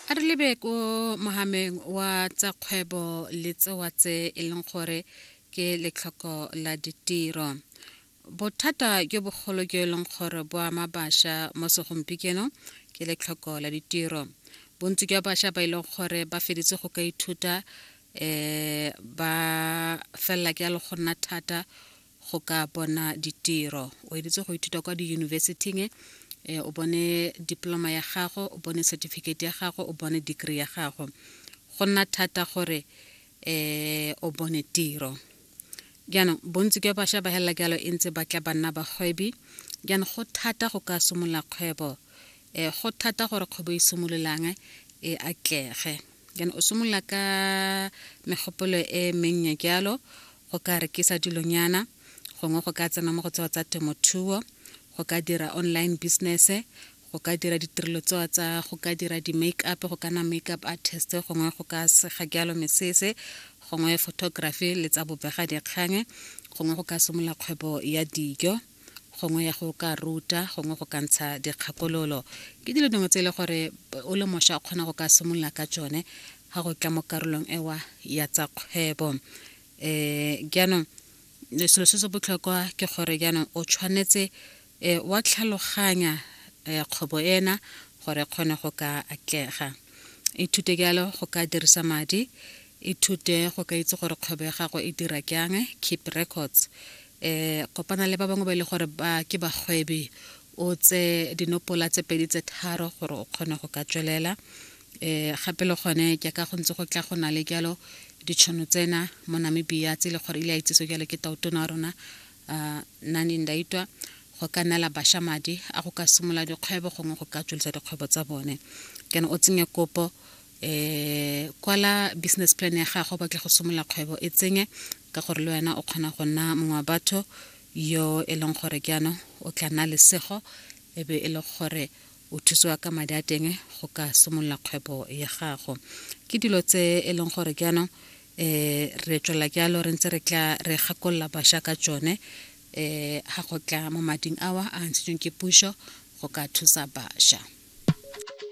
a re lebe ko mogameng wa tsa kgwebo le tsewa tse e leng gore ke letlhoko la ditiro bothata jo bogolo jo e leng gore bo ama bašwa mo segompikenong ke letlhoko la ditiro bontsi jwa bašwa ba e leng gore ba feditse go ka ithuta um ba felela ke ya le go nna thata go ka bona ditiro o editse go ithuta kwa diyunibesithing e eh, o bone diploma ya gago o bone certificate ya gago o bone degree ya gago go nna thata gore um o bone tiro jaanong bontsi jwa bašwa ba helela jalo e ntse ba tla ba nna bagwebi jaanong go thata go ka simolola kgwebo um go thata gore kgwebo e simololang e atlege jaanong o simolola ka megopolo e mennye jalo go ka rekisa dilonyana gongwe go ka tsena mo go tsewa tsa temothuo go ka dira online business go ka dira ditirelo tsewa tsa go ka dira di-make up go kana make up artist gongwe go ka sega jalo mesese gongwe photography le tsa bobega dikgang gongwe go ka simolola kgwebo ya dijo gongwe ya go ka ruta gongwe go ka ntsha dikgakololo ke dilo dingwe tse e le gore o le mošwa o kgona go ka simolola ka tsone ga go tla mo karolong ewa ya tsa kgwebo um jaanong selo se se botlhokwa ke gore jaanong o tshwanetse um wa tlhaloganya um kgwebo ena gore kgone go ka atlega ithute jalo go ka dirisa madi ithute go ka itse gore kgwebo ya gago e dira jang keep records eh kopana le ba bangwe ba e le gore ba ke bagwebi o tse dinopola tse pedi tse tharo gore o kgone go ka tswelela eh gape le gone ke ka go ntse go tla go na le jalo ditšhono tsena mo namibia tse e le gore ile a itsese jalo ke tautona wa rona um nani ndaitwa go ka neela bašwa madi a go ka simolola dikgwebo gongwe go ka tswelisa dikgwebo tsa bone kana o tsenye kopo um kwala business plan ya gago batle go simolola kgwebo e tsenye ka gore le wena o kgona go nna mongwe wa batho yo e leng gore ke ano o tla nna lesego e be e le gore o thusiwa ka madi a teng go ka simolola kgwebo ya gago ke dilo tse e leng gore ke ano um re tswelela ke alo re ntse re tla re gakolola bašwa ka tsone um ga go tla mo mading awa a ntshitsweng ke puso go ka thusa bašwa